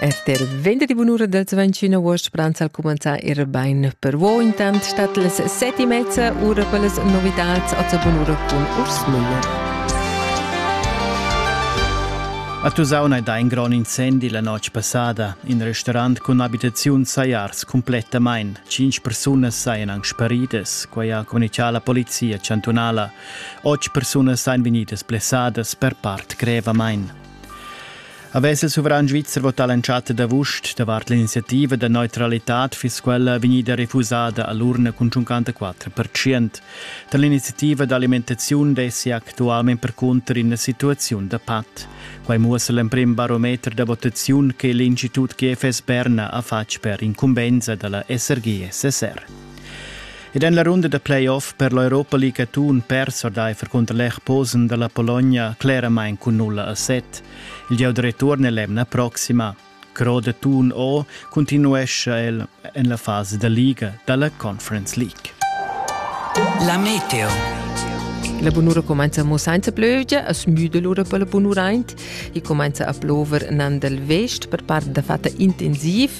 RTL venderdi bunura del 21 agost pranza al cumanzar ir bain per vo intant stat les seti mezza ura per les novitats a bunura cun Urs Müller. A Tusaun hai dà in grond incendi la notg passada. In restaurant cun abitaziun sajars complettamain. Cinc persunas sajan anc sparidas, quai ha communichà la polizia chantunala. Otg persunas sajan vegnidas blessadas per part grevamain. Avess il suveran svizzer votà l'entschatta d'avust davart l'iniziativa da neutralitad fiss quella vegnida refusada a l'urna cun 54%. Tar l'iniziativa d'alimentaziun dessi actualmain percunter ina situaziun da pat. Quai muossa l'emprim barometer da votaziun che l'Institut GFS Berna ha fatg per incumbensa da la SRG-SSR. Ed en la runda da playoff per l'Europa League atun pers ordaifer cunter l'Erposen da la Pologna cleramain cun nulla a set. Il gieu da return è l'emna proxima. Cro da Thun O continuescha el en la fasa da liga da la Conference League. La Meteo. La bunura comenza mo senza plövgia, as müda l'ura per la bunuraint e comenza a plover nan dal vest per part da fatta intensiv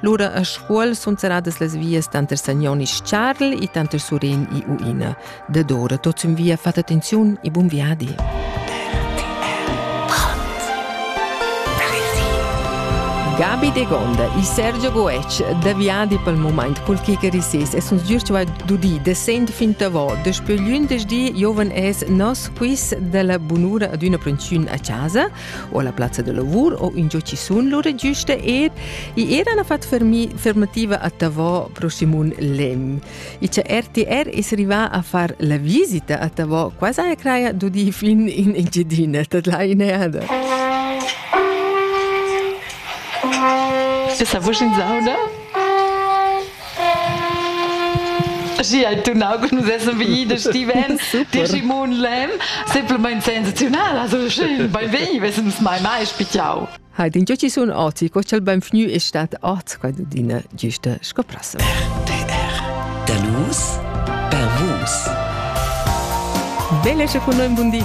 Lura a Scuol sun serradas las vias tanter Sagnon e Charl e tanter Suren e Uina. Da dora tot sün via fat attenziun e bun viadi. Gabi De Gonda e Sergio Goetsch da viadi pel moment col kicker rises e sun giust vai dudi da sent fin tavo despe glündesdi giovan es nos quiz della bunura ad üna prensiun a casa o alla plazza del lavor o ingio ci sun lura giuste er i era na fat fermativa a Tavò pro Simon Lem i cha RTR es rivà a far la visita a Tavò quasi a craia d'udi fin in Engiadina dat la ineada Bist du ein sauda? Schi hai tunau che nus essan vegni da Steven, di Simon Lem, semplamein sensaziunal, also schön, bei weh, wir sind mai mai spichau. Hai din giuci sun oti, co ch'el ben fnu e stat ot, quai dudina giusta scoprasso. RTR Danus per vus. Belle e con noi buondì.